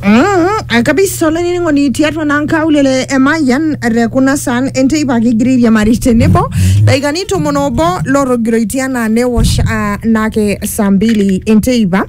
Mm, kabisa olainining'oni tiatua naa nkaulele emayian te kuna saan enteipa kigira airiamari tenebo dakikani tomon obo lootogiroitie anaa newosh ah, naake saa mbili enteipa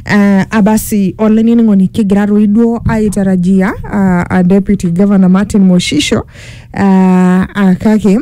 Ah, abasi olainining'oni kigira toi duo aitarajia ah, ah, deputy governor Martin Moshisho ah, ah, kake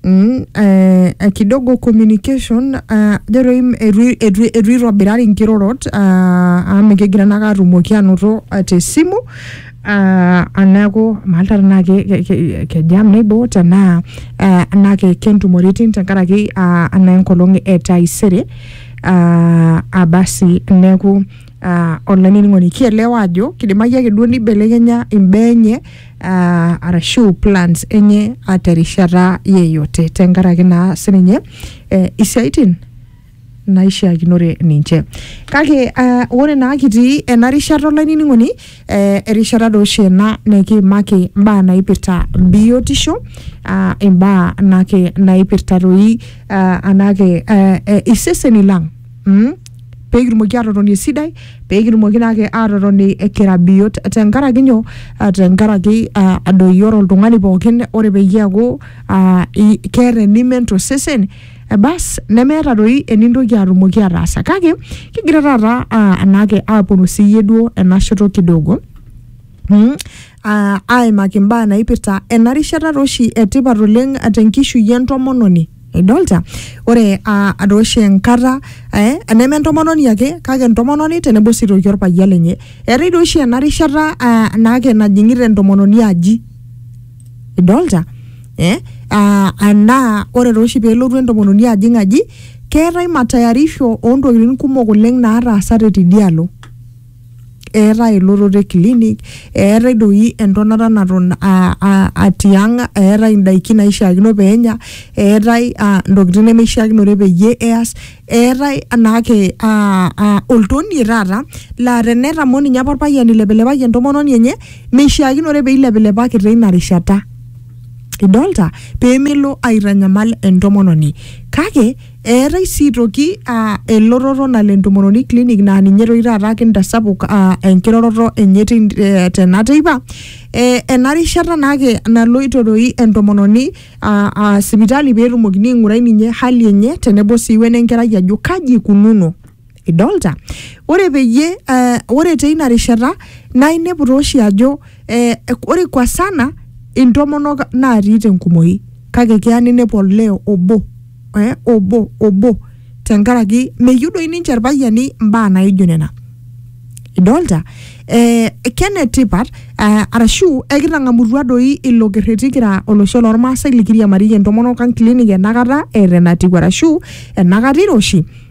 Mm, eh, eh, kidogo communication ah, jo doi m- eitu eitu eitu itobirari nkirorot ah, amu mikigira nake atumoki anoto ah, te simu ah, ah, neeku maalta tenaa ke- ke- ke- kejam nebo tenaa eh, enaa ke- kentumoritin tenkaraki ah, enaa enkolong e taisere ah, ah, basi neeku uh, olainining'oni kielewa ajo kidimayu ake duo nibelekenya imbaa enye uh, arashu plans enye uh, terishata yeyote tenkaraki naa sininye eh, isiaitin naishiakinore ninche kake uh, ore naa kitii ena rishata olainining'oni eh, erishata doo oshi ena nikiimaki mbaa naipirta biotisho uh, imbaa nake naipirta toi uh, anake uh, eh, iseseni lang Mm? pee kitumoki aatotoni esidai pee kitumoki naake aatotoni kira biot tenkaraki nyoo Ah, tenkaraki ah, doi ore oltung'ani pookin ore peyie eeku ah, i- keeta enimen tosesen eh, bas nemeeta doi enintoki atumoki ataasa kake kigira taata ah, anaake aaponu siiyie duo ena shoto kidogo Mm. Ah, aimaki imbaa naipirta ena rishata taa oshi etipat oleng tenkishui entomononi idolta ore ah, ata oshi enkata eh, eneme entomononi ake kake entomononi tenebo sii toki orpayian lenye eetae doi oshi ena rishata ah, naake najing'ita entomononi aji idolta eh? ah, anaa ore taa oshi pelotu entomononi ajing aji keetae matayarisho ontokitin kumok oleng nataasate tidialo eetae elototo e clinic eetae doi entonata naton aa- aa- aa tiang eetae indaiki naishiakino peenya eetae uh ntokitin nemeishiakinore peyie eyas eetae naake uh uh oltonie taata laa tenetamo ninye apa orpayian eilepilepaki entomononi enye meishiakinore peilepilepaki teina rishata idolta pemelo aitanyamal entomononi kake. Eetai sii toki aa elototo nalo entomononi clinic naa ninye toki taata kintasapuk aa enkiroroto enye tin- eh, tena teipa. Eh, ena rishata naake naloito doi entomononi aa aa sipitali peetumokini aing'urai ninye hali enye tenebo sii wenenkerai ajo kaji ikununo. idolta ore peyie eh, ore teina rishata naa inepu tooshi ajo eh, ore kwa sana intomonok naatii tenkumoi kake keya ninepu olee obo eh, obo obo tenkaraki meyieu doi ninche irpayiani imbaa naijo nena idolta eh, kenetipat eh, arashu ekitang'amutua doi ilo kerreti kira olosho lormaasai likiriamariyie entomonok ang clinic enakata eeta enatiu arashu enakata iroshi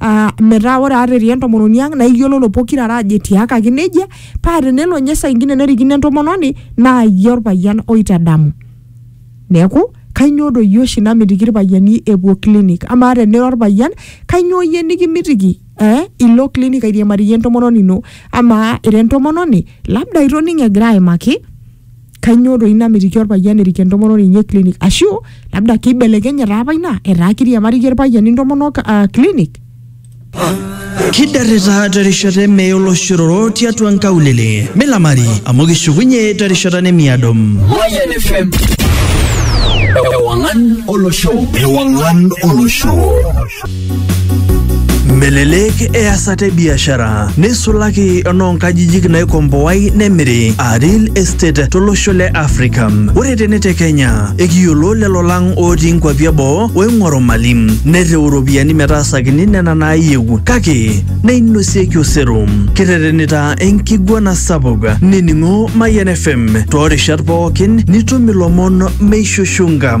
ah, metaa ore ata etii entomononi ang naa iyiololo pokirare ajo etiakaki nejia paa tenelo ninye saa ingine nerikino entomononi naa iyie orpayian oitadamu neeku kainyoo doi oshi namitiki irpayiani epuo clinic amaa tenira orpayian kainyoo iyie nikimitiki eh, ilo clinic airiamariyie entomononi ino amaa ira entomononi labda itoning'o egira aimaki kainyoo doi namitiki orpayian erik entomononi enye clinic ashu labda keibelekenye taa apa ina etaa kiriamariyie irpayiani intomonok uh, clinic Kidarrita terishata eme oloshororo tiatua nkaulele. Milamari amu kishukunye terishata nemiado. Mayan FM. Ewangan Olosho. Ewangan Olosho. Melelek easata e biashara neisulaki enoonkajijik naikomboai nemiri aa real estate tolosho le Afrika. Ore tene te Kenya, ekiyiolo lelo lang ootii nkwapi eboo oing'oru mali nereu iropiyiani metaasakini nena naayieu kake neinosieki osero. Kirretenita enkiguana sapuk nining'o Mayian FM toorishat pookin nitum ilomon meishushunga.